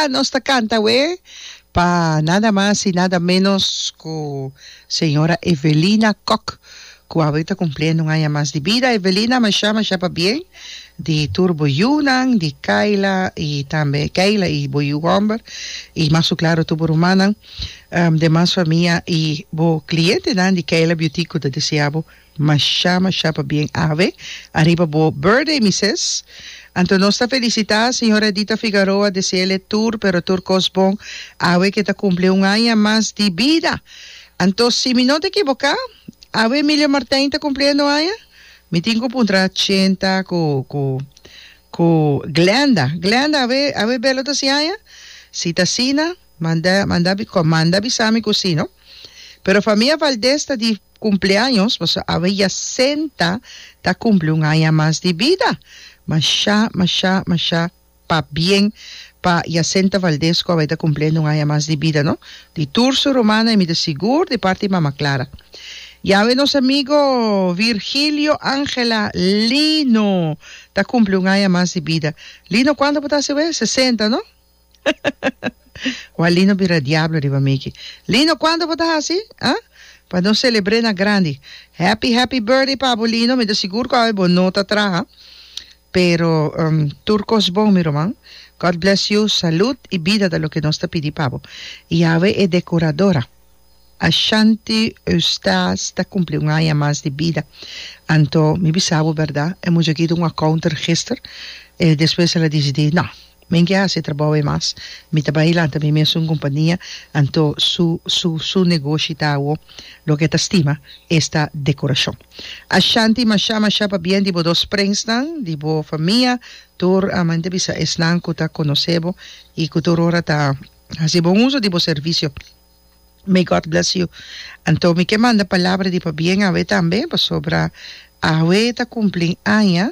Nos ta canta awe pa nada mas y nada menos cu señora Evelina Kok cu awe ta cumpliendo un aña mas di bida. Evelina masha masha pabien di tur bo yunan di Kayla y tambe Kayla y bo yu homber y mas su claro tur bo rumannan. Demas famia i bo klientenan di Kayla Beautique ku ta deseá bo mashá mashá pa bien ave ariba bo burdei mi ses. Anto nos ta felisitá señora Edita Figaroa, deseele tur pero tur kos bon ave ke ta kumpli un aña mas di bida. Anto si mi no ta ekiboká ave Emilio Martijn ta kumpliendo aña? Mi tin ku puntra Chenta ku ku ku Glenda, Glenda ave ave Belo ta hasi aña? Si ta asina. Manda manda mi ko manda bisa mi ku si no pero famia Valdez ta di kumpleaños paso awe ya senta ta kumpli un aña mas di bida masha masha masha pa bien pa ya senta Valdez ku awe ta kumpliendo un aña mas di bida no di tur su rumana y mi ta sigur di parti mama Clara y awe nos amigo Virgilio Angela Lino ta kumpli un aña mas di bida Lino kuantu bo ta hasi awe sesenta no. Wak Lino bira diablo riba Mickey. Lino cuando bo ta haci? Ha? Pa nos celebre na grandi. Happy happy birthday pa bo Lino, mi ta sigur cu awe bo no ta traha. Pero um tur cos bon mi roman. God bless you, salud y bida ta loke nos ta pidi pa bo. Y awe e decoradora Ashanti Eustace ta cumpli un aña mas di bida. Anto mi bisa bo berdad, e muchachito un accounter gister, eh despues el a dicidi, no, Men ke hasi e trabou ei mas. Mi ta bai y lanta mi mes un kumpania, anto su su su negoshi ta awo. Loke e ta stima esta dekorashon. Ashanti masha masha pa bien di bo dos prensnan, di bo famia, tur a manda bisa esnan ku ta konosé bo i ku tur ora ta hasi bon uso di bo servisio. May God bless you. Anto mi ke manda palabra di pabien awe tambe, pasobra awe ta kumpli aña.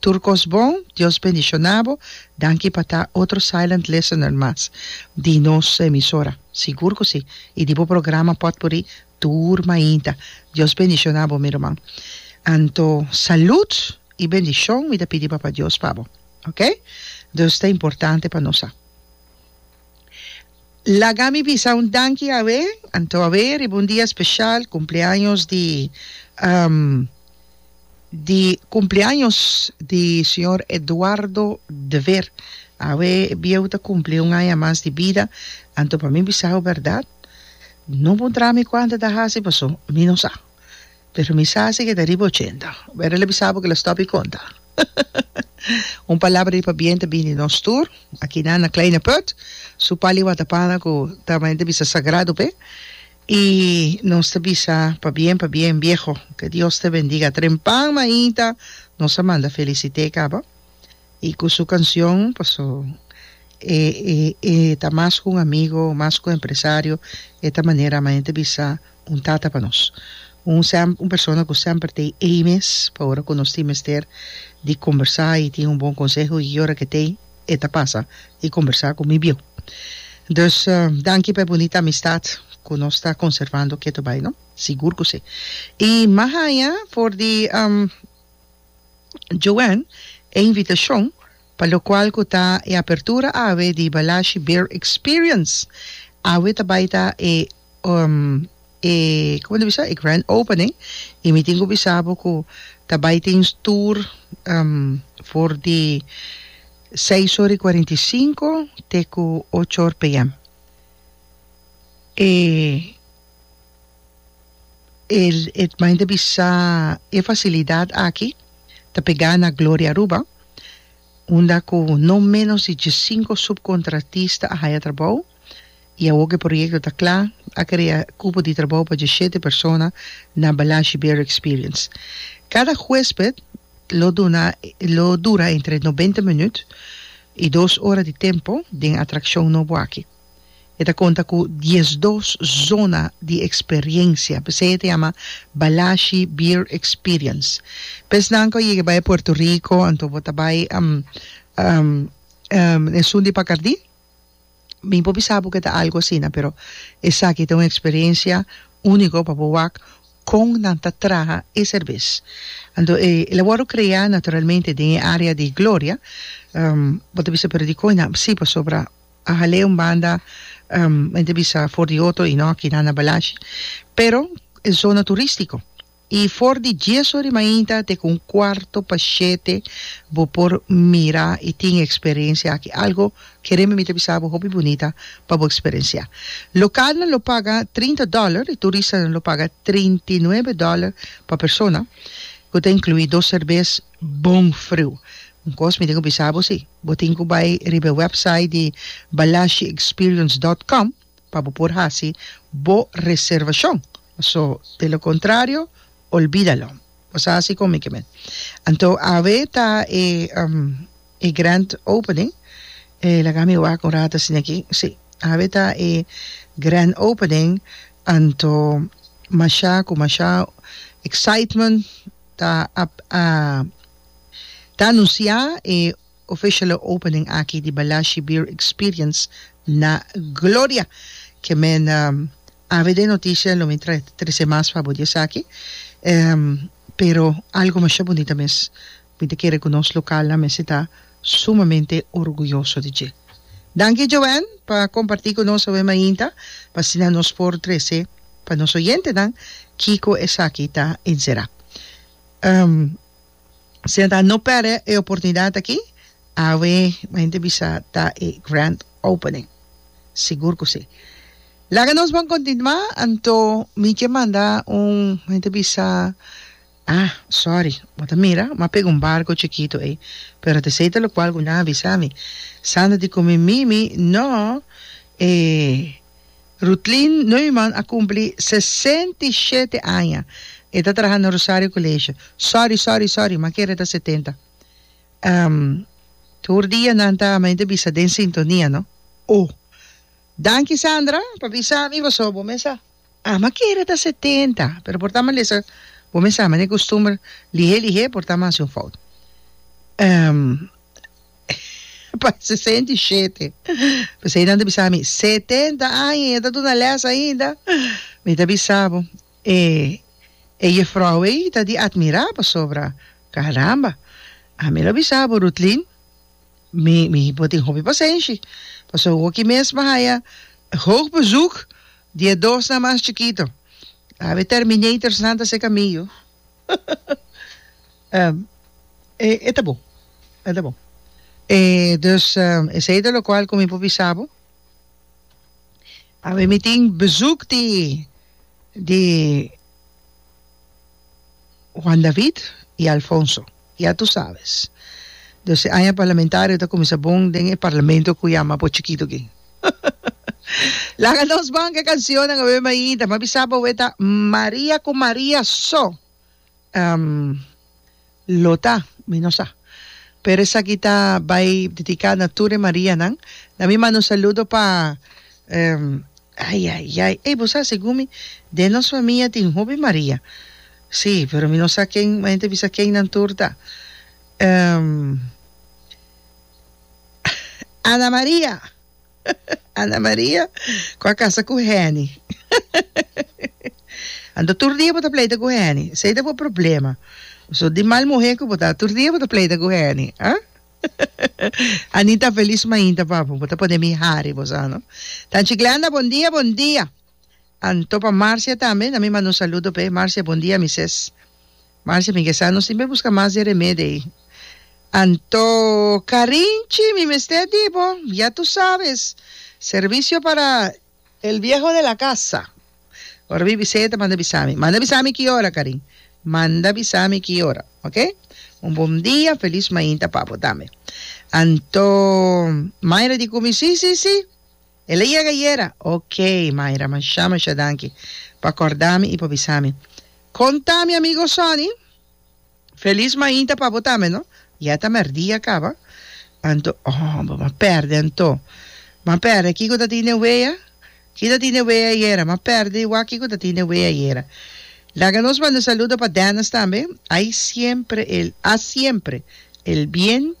Tur kos bon, Dios bendiciona bo. Danki pa ta otro silent listener mas di nos emisora. Sigur cu si. Y di bo programa potpourri tur mainta. Dios bendiciona bo mi ruman. Anto salud y bendicion mi ta pidi Papa Dios pa bo. Ok? Dus ta importante pa nos sa. Laga mi bisa un danki awe, anto awe riba un dia special cumpleaños di di cumpleaños di señor Eduardo de Ver awe e bieu ta cumpli un aña mas di bida anto pa mi bisau berdad no bo traha mi cuanta ta hasi paso mi no sa. Pero mi sa si ke ta riba ochenta. Wera lo bisa bo ke lo stop i konta. Un palabra di pabien ta bini nos tur akinan na Kleine Put. Su pal i wata pana ku ta men ta bisa sagrado p'e. I nos ta bisa pabien pabien bieho. Ke Dios te bendiga. Trempan mainta nos a manda felisite caba. Y cu su cancion, paso e e ta mas cu un amigo, mas cu empresario, e ta manera ama hende bisa un tata pa nos. Un sem un persona cu semper ta ey mes pa ora cu nos tin mester di combersa y tin un bon conseho y ora que t'ey e ta pasa y combersa cu mi bieu. Dus danki pa e bunita amistad cu nos ta conservando keto bay no? Sigur cu si. Y mahaña for di. Joanne e invitashon pa lokual ku ta e apertura awe di Balashi Beer Experience. Awe ta bai ta e e como ta bisa e grand opening y mi tin ku bisa bo ku ta bai tin stoer for di seis ora y cuarenta y cinco te ku ocho or pm. E E herman ta bisa, E facilidad aki ta pegá na Gloria Aruba, unda cu no ménos di diescinco subcontratista a haya trabou y awor cu e proyecto ta cla, a crea cupo di trabou pa diesshete persona na Balashi Beer Experience. Cada huesped lo duna lo dura entre noventa minuut y dos ora di tempo den atraccion nobo aki. E ta konta ku diesdos zona di eksperiencia, p'esei e ta yama Balashi Beer Experience. Pa esnan ku a yega bai Puerto Rico, anto bo ta bai Esun di Pacardí? Mi por bisa bo ku e ta algu asina, pero esaki ta un eksperiencia úniko pa bo wak kon nan ta traha e serbes. Anto e a wòrdu kreá naturalmente den e área di Gloria, bo ta bisa pero dikon nan? Sí, pasobra A hal'é un banda men ta bisa for di otro i no aki nan na Balashi, pero e zona turístiko. I for di dies ora di mainta te ku un kuarto pa shete bo por mira i tin e eksperensia aki. Algu ke rembe mi ta bisa bo hopi bunita pa bo eksperensiá. Lokalnan lo paga trinta dòler i turistanan lo paga treinta i nuebe dòler pa persona, ku ta inkluí dos serbes, Bon friu. Un kos mi tin ku bisa bo si, bo tin ku bai riba e wèpsait di balashiexperience dòt kòm pa bo por hasi bo reservashon. So, de lo kontrario, olbida lo. Bo sa hasi kon mi ke mi. Anto awe ta e e grand opening? E laga mi wak un rato asina aki. Si, awe ta e grand opening, anto masha ku masha excitement. Ta ta anunsiá e official opening aki di Balashi Beer Experience na Gloria. Ke men avd e noticia lo mi tra trese mas pa bo di esaki. Pero algo masha bunita mes. Mi ta kere ku nos lokalnan mester ta. sumamente orguyoso di dje. Danki Joan pa comparti cu nos awe mainta, p'asina nos por trece pa nos oyentenan kico esaki ta encera. Ehm, asina ta no perde e oportunidad aki, awe mainta bisa ta e grand opening, sigur cu si. Laga nos bon continua, anto mi ke manda un, mainta bisa, Ah, sorry, bo ta mira? Bo a pega un barco chikito ey. Pero ta esey ta locual cu nan a bisa mi. Sandra di cu mi, Mimi, no e Ruthlin Neumann a cumpli sesenta y shete aña. E ta traha na Rosario College. Sorry, sorry, sorry, m'a kere ta setenta. Ehm, tur dia nan ta men ta bisa den sintonia, no? Oh. Danki, Sandra, pa bisa mi pasobra bo mesa. Ama kere ta setenta, pero por ta malesa bo mester hami den costumber lihe lihe por ta mas di un fout. pa sesenta i shete, pesey nan ta bisa mi setenta aña y e ta duna les ainda, mi ta bisa bo e e jefrouw ey ta di admira pasobra caramba, ami lo bisa bo Ruthlin. Mi mi bo tin hopi pasenshi paso hoki mes mi haya hoog bezoek di e dosnan mas chikito awe e terminatorsnan ta seka mi yu e ta bon e ta bon e dus esei ta lokual ku mi por bisa bo. Awe mi tin bezoek di di Juan David y Alfonso ya tu sabes dos e aña parlamentario ta cuminsa bon den e parlamento cu yama bo chikito aquí laga nos banca e cancionnan awe mi a yinta mi a bisa bo awe ta Maria cu Maria so. Ehm, lo ta, mi no sa. Pero esaki ta bai dedica na tur e Marianan. Na mi manda un saludo pa, ehm, ai ai ai, ey bo sa segun mi den nos famia tin hopi Maria, si, pero mi no sa ken, mente bisa ken nan tur ta. Ehm, Ana Maria! Ana Maria cu a casa cu Heni anto tur dia bo ta pleita cu Heni esey ta bo problema so di mal muhe cu bo ta tur dia bo ta pleita cu Heni ah Anita feliz mainta papu bo ta pone mi hari bo sa no Tanchi Glenda bon dia bon dia. Anto pa Marcia tambe na mi manda un saludo p'e. Marcia, bon dia mi ses. Marcia, mi ke sa nos tin be buska mas di remede ei. Anto Karinchi, mi mester di bo, ya tu sabes, servicio para. El viejo de la casa. Ora mi biseta manda bisa mi. Manda bisa mi ki ora Karin. Manda bisa mi ki ora, ok. Un bon dia, feliz mainta pa bo tambe. Anto Mayra di Kumi, si, si, si. El a yega ayera? Ok, Myra, masha masha danki pa corda mi y pa bisa mi. Con ta mi amigo Sonny? Feliz mainta pa bo tambe no. Ya ta merdia caba. Anto, oh, bo m'a perde anto. M'a perde, kico ta tin den wea? Ki ta tin den wea ayera? M'a perde y wak kico ta tin den wea ayera. Laga nos manda saludo pa Dennis tambe. Hay siempre el, ha siempre el bien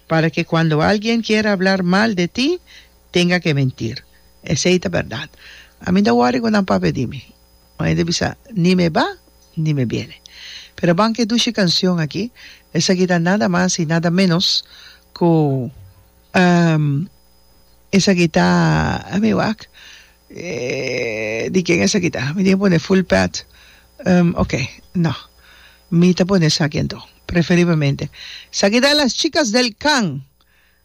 para que cuando alguien quiera hablar mal de ti, Tenga ke mentir. Esei ta bèrdat. A mi ta wòri ku nan papia di mi. Un hende bisa, Ni me ba, ni me biene. Pero ban ke dushi kanshon aki, esaki ta nada mas i nada ménos ku, ehm, esaki ta, a mi wak, di ken esaki ta? Mi tin ke pone full pad, ehm, oke, no. Mi ta pone esaki anto, preferiblemente. Esaki ta Las chicas del can.